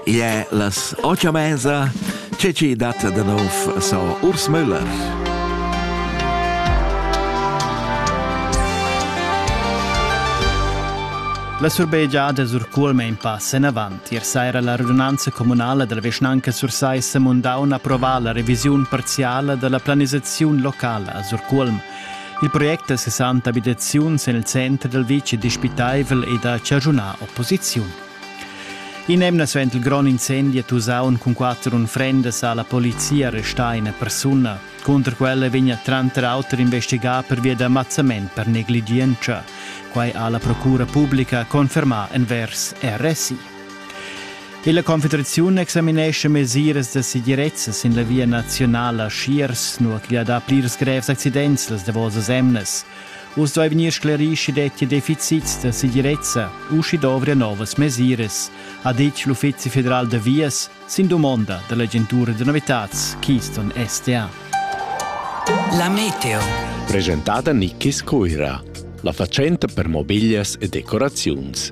Igl è las otg a mesa. Tge ci dat da nov so Urs Müller. La surbegiada Surculme in pass en avant. Ier saira la radunanza communala della vischnanca Sursaissa Mundaun approvà la revisiun parziale della planisazione locale a Surculm. Il project da 60 abitaziuns en il center dal vitg è dispitaivel ed ha chaschunà opposiziun. In'emna suenter il grond incendi a Tusaun cun quatter unfrendas ha la polizia arrestà ina persuna. Cunter quella vegn tranter auter investigà pervia da mazzament per negligientscha. Quai ha la procura publica confermà envers RSI. Tilla Confederaziun examinescha mesiras da segirezza sin la via nazionala Schiers, nua ch'igl ha dà plirs grevs accidents las davosas emnas. Uss dovri vegnir sclerì sch'i dettia deficits da segirezza u sch'i dovria novas mesiras, ha ditg l'Uffizi federal da vias sin dumonda da l'agentura da novitads Keystone SDA. La meteo. Presentada Nikkis Cuira, la fatschenta per mobiglias e decoraziuns.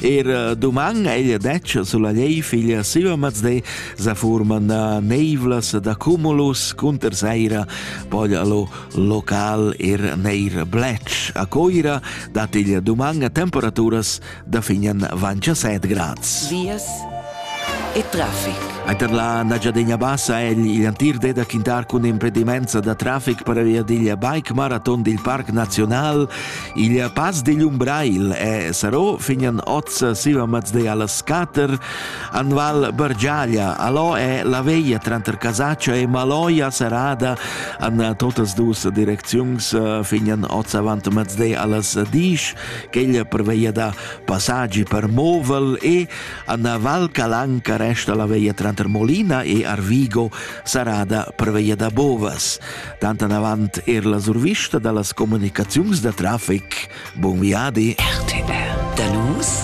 Er eh, doman ella detg sulla lei figlia Silvermaz de sa forman da neivlas da cumulus cunter saira poi allo local er neir blec a coira dat il doman a temperaturas da finen vancia 7 grads. Vias e traffic. Eiter la Nagiadegna Bassa è il antir de da quintar cun impedimenza da traffic per via digl bike marathon dil Parc Nazional Il pass digl Umbrail e Sarò fignan oz siva mazday alla Scater, an Val Bergiaglia, alò è la veia tranter Casaccia e Maloia serrada an totas dus direcziuns fignan oz avant mazday allas Disch, quegl preveia da passaggi per Movel e an Val Calanca resta la veia tranter Molina e Arvigo serrada preveia da Bovas. Tant avant er la survista da las comunicaziuns da traffic. Buon viadi! RTR. Da nus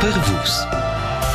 per vus.